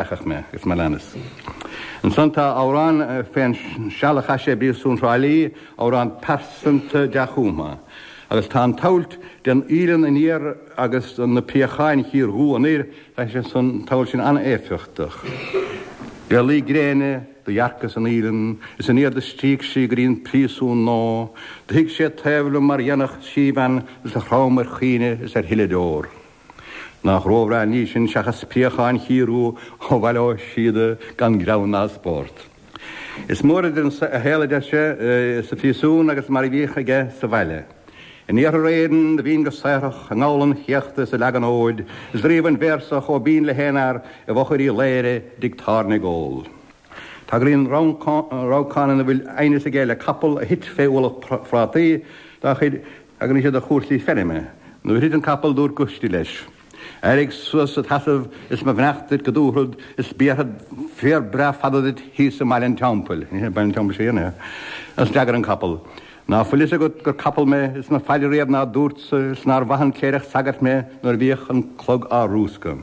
Feicfidh mé agus mé leanas. Ansan tá amhrán fén seal a chaith sé i bpríosún Thrá Lí, amhrán pearsanta dea-chumtha. Agus tá an tsamhailt den fhaoileann aniar agus Na Préacháin chiardhubha anoir, tá an tsamhailt sin an-éifeachtach. Le luí gréine do dhearcas an fhaoileann is aniar do stríoc sí go dtí an príosún Nó do shuigh sí taobh liom mar dhéanfadh síbhean is do chrom ar chaoineadh is ar shileadh deor. Nach róbhreá an ní sin seachas préacháin chiardhubha ó Bhaile Ó Síoda gan greann ná spórt. Is mór idir an saol, a deir sé, sa phríosún agus mar a bhíodh aige sa bhaile. In iarthar Éireann do bhínn go saothrach i ngabhal an chéachta is ag leagan fóid is do ríomhainn véarsa chomh binn le haon fhear i bhfochair Uí Laoghaire i dtigh tábhairne ag ól. Tagraíonn rabhcán ina bhfuil aighneas aige le capall a thit fé ualach prátaí tagraíonn sé do chúrsaí feirme. Nuair a thit an capall dúirt Goistí leis, Éirigh suas id sheasamh is mo bheannacht duit go dtabharfad is béarfad féar breá fada duit thíos i mBaile an Teampaill. Agus d'fhreagair an capall, Ná fuil fhios agat gur capall mé is mo phaidir riamh ná dúrtsa is nár mhaith an cléireach sagairt mé nuair a bhíodh an clog á rúscadh.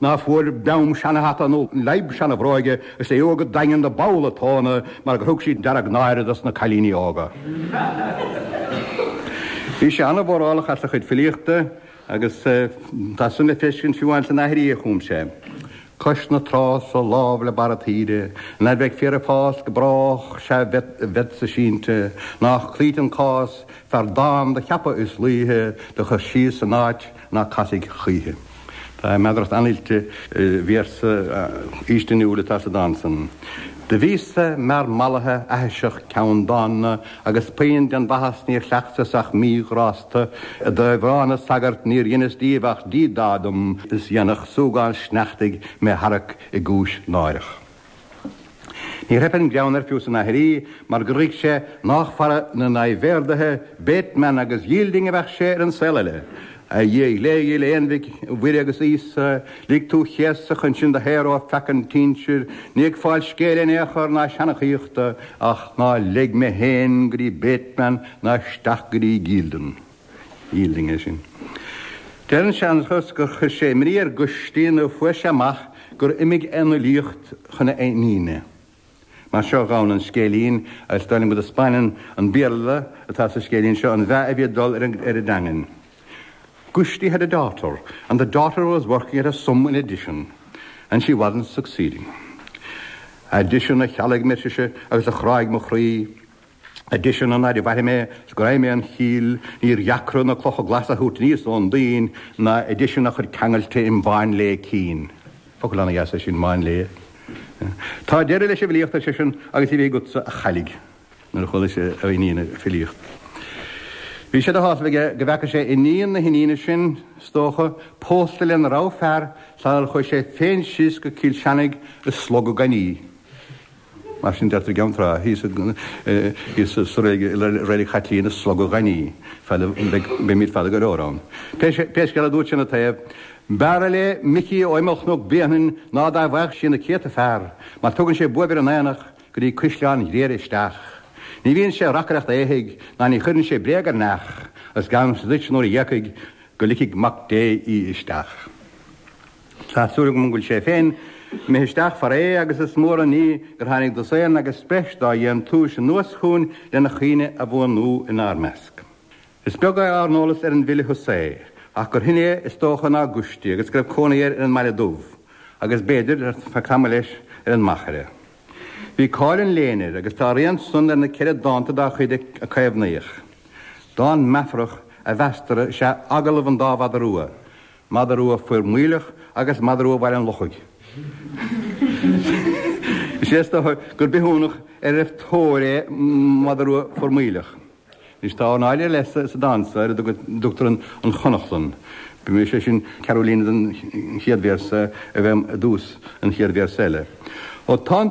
Ná fuair Beam seanahata nó leidhb seanabhróige is é go daingean na bpolla tóna mar gur thug siad dearg náire dos na cailíní óga. Bhí sé an-mhórálach as a chuid filíochta agus tá san le feiscint fiú amháin san aithrí a chum sé, Cois na trá so lámh le barra taoide, Ná beidh féar ag fás go brách sea bheadsa sínte, Nách cloíte an cás, fear dán do cheapadh is laoithe do chur síos san áit, ná casfaidh choíche. Tá meadaracht an-oilte i véarsa faoistiniúil atá sa dán san, Do bhíos-sa mear mallaithe, aithiseach, ceanndána, agus puinn den mhaitheas níor chleachtas ach míghrásta, i dtaobh na sagart níor dheineas díobh ach díodá dom is dhéanfadh súgán sneachtaidh mé tharrac i gcúis náireach. Níor theip an greann air fiú san aithrí mar gur ghuigh sé nách fara na n-aibhéardaithe, Bateman agus Yielding a bheadh sé ar an saol eile. A Dhia ghléigil, a Aonmhic Mhuire agus Íosa, lig tú chéasadh chun sinn do shaoradh ó pheaca an tsínsir, ní ag fáil scéil in aon chor ná seanchaíochta, ach ná leig mé féin go dtí Bateman ná isteach go dtí Yielding. Yielding é sin. Deir an seanchas gur chuir sé imní ar Goistí nuair fuair sé amach gur imigh an fhilíocht chun a iníne. Mar seo a ghabhann an scéilín, agus dar liom go dtaispeáineann an Béarla atá sa scéilín seo an meath a bhí ag dul ar an dteangain. Goistí had a daughter, and the daughter was working at a sum in addition, and she wasn't succeeding. Addition a chealg mé, ar sise, agus a chráigh mo chroí. I dtiteann an fhaid a mhairfidh mé 's go raghaidh mé 'on chill, níor dheacra na clocha glasa a thabhairt aníos ón dtuinn ná i dtiteann a chuid ceangailte im mháinléa cinn. Focal an-dheas é sin, máinléa. Tá deireadh leis an bhfilíocht, ar seisean, agus bíodh sé agatsa, a chailligh. Nuair a chuala sé a iníon ag filíocht, bhí sé de shásamh aige go bhfeaca sé iníon na hiníne sin, is dócha, pósta lena rogha fear, sara chuaigh sé féin síos go Cill Seanaigh i slogadh gainmhe. Mar sin deirtear i gCeann Trá, thíos i Reilig Chaitlíona, slogadh gainmhe, beimid fada go leor ann. Pé scéal é, dúirt sé ina taobh, b'fhearra léi Micí ó imeall Chnoc Bréanainn ná dá bhfaigheadh sí na céadta fear, mar tugann sé buaibh ar an aonach go dtí Caisleán Ghriaire isteach. Ní bhíonn sé ag reacaireacht éithigh ná ní chuireann sé bréag ar neach, agus geallaimse duit nuair a dh'éagfaidh go ligfidh Mac Dé í isteach. Tá súil agam go bhfuil sé féin imithe isteach fara é agus is mór an ní gur tháinig dosaen agus breis dá dhéantúis anuas chugainn lena chuimhne a bhuanú inár measc. Is beag ár n-eolas ar an bhfile Hussey ach gur shine é is dócha ná Gusti agus go raibh cónaí air ar an mBaile Dubh agus, b'fhéidir, ar feadh tamaill leis ar an Machaire. Bhí cáil an léinn air agus tá a rian san ar na ceithre dánta dá chuid a caomhnaíodh. Dán meafarach a mheastar is ea 'Agallamh an Dá Mhada Rua', Mada Rua Formaoileach agus Mada Rua Bhaile an Lochaigh. Is é is dócha gur bithiúnach ar an tóir é Mada Rua Formaoileach. Anois, tá ornáid ar leith sa dán seo ar a dtugtar An Chonachlann. Is é sin ceathrú líne den chéad véarsa a bheith i dtús an chéad véarsa eile. Ó tá an.